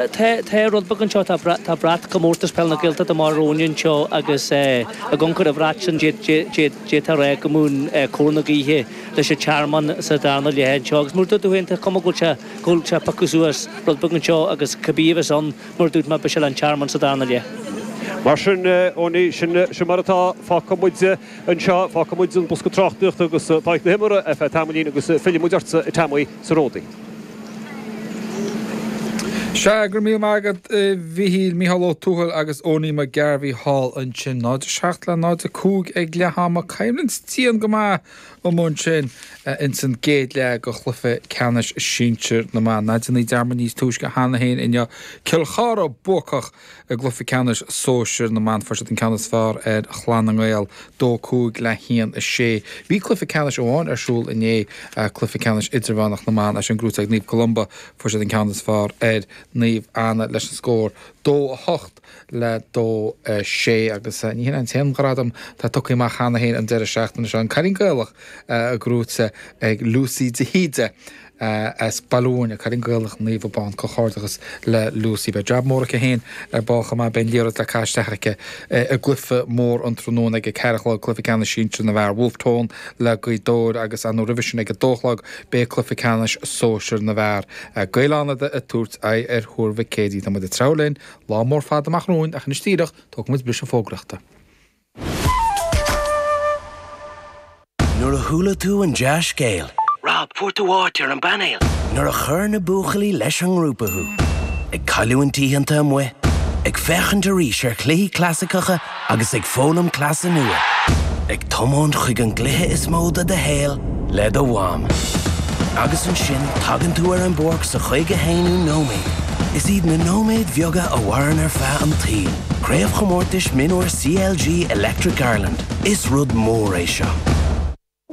Tá rud beag anseo, tá brat Comórtas Peil na Gaeltachta díreach romhainn anseo agus i gcomhair an bhrait sin d'fhéadfá rá go mbíonn cóir na gaoithe leis an Tearmann sa darna leath anseo agus mar a dúirt tú féin tá cuma go bhfuil sé go bhfuil sé ag piocadh suas rud beag anseo agus cibé a bheas ann mar a dúirt mé beidh sé le an Tearmann sa darna leath. Mar sin ó ní sin sin mar atá fágtha muid anseo fágtha muid an bosca tráchtaíochta agus tá na himreoirí ar feadh tamaillín agus fillfidh muid ortsa i Temaí. sa Ródaí. Sea, go raibh míle maith agat a Mhichíl, Micheál Ó Domhnaill agus Eoghainí Mac Gairbheith thall ansin. 0 7 le 0 5 ag leath ama. Coimhlint dian go maith againn ansin ins an gcéad leath go chluiche ceannais sinsir na mban. Mar a d'airíomar níos túisce cheana féin inniu. Cill Chartha buacach. I gcluiche ceannais sóisir na mban fuair siad an ceann is fearr ar Chlann na nGael, 2, 5 le 1, 6. Bhí cluiche ceannais amháin ar siúl inné, cluiche ceannais idirmheánach na mban. É sin gnóite ag Naomh Columba fuair siad an ceann is fearr ar Naomh Anna leis an scór 2, 8 le 2, 6 agus ní hin an t-aon ghradam atá tugtha amach cheana féin an deireadh seachtaine seo. An Cailín Gaelach gnóite ag Lucy de hÍde. a as Baile Mhúirne. Cailín Gaelach Naomh Abán Comhghairdeachas le Lucy Beidh jab mór aici féin ar ball chomh maith Beidh an liathróid le caitheamh isteach aici i gcluife mór an tráthnóna ag a ceathair a chlog Cluife Ceannais Sinsir na bhFear Wolfe Tone le Gaoth Dobhair agus an nó roimhe sin ag a dó a chlog beidh Cluife Ceannais Sóisir na bhFear ag Gaeil Fhánada ag tabhairt aghaidh ar Thuar Mhic Éadaigh Tá muid ag treabhadh linn lá mór fada amach romhainn ach anois díreach tógfaimid briseadh fógraíochta. Nuair a chuala tú an dea-scéal. Rob, fuair tú áit ar an bpainéal! Nuair a chuir na buachaillí leis an ngrúpa thú. Ag cailliúint oícheanta amuigh, ag féachaint arís ar chluichí clasaiceacha agus ag foghlaim cleasa nua. Ag tiomáint chuig an gcluiche is mó de do shaol le do mham. Agus ansin tagann tú ar an bpáirc sa chaoga haonú nóiméad. Is iad na nóiméid bheaga a mhaireann ar feadh an tsaoil. Craobhchomórtais Mionúir CLG Electric Ireland, Is rud mór é seo.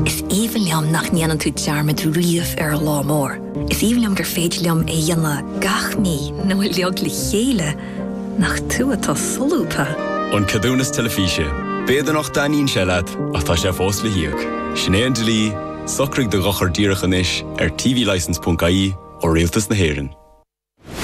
Is aoibhinn liom nach ndéanann tú dearmad riamh ar an lá mór. Is aoibhinn liom gur féidir liom é a dhéanamh gach mí nó uilig le chéile, nach tú atá solúbtha? An Ceadúnas Teilifíse, B'fhéidir nach dtaitníonn sé leat, ach tá sé fós le híoc. Sin é an dlí, socraigh do dhochar díreach anois ar tvlicense.ie ó Rialtas na hÉireann.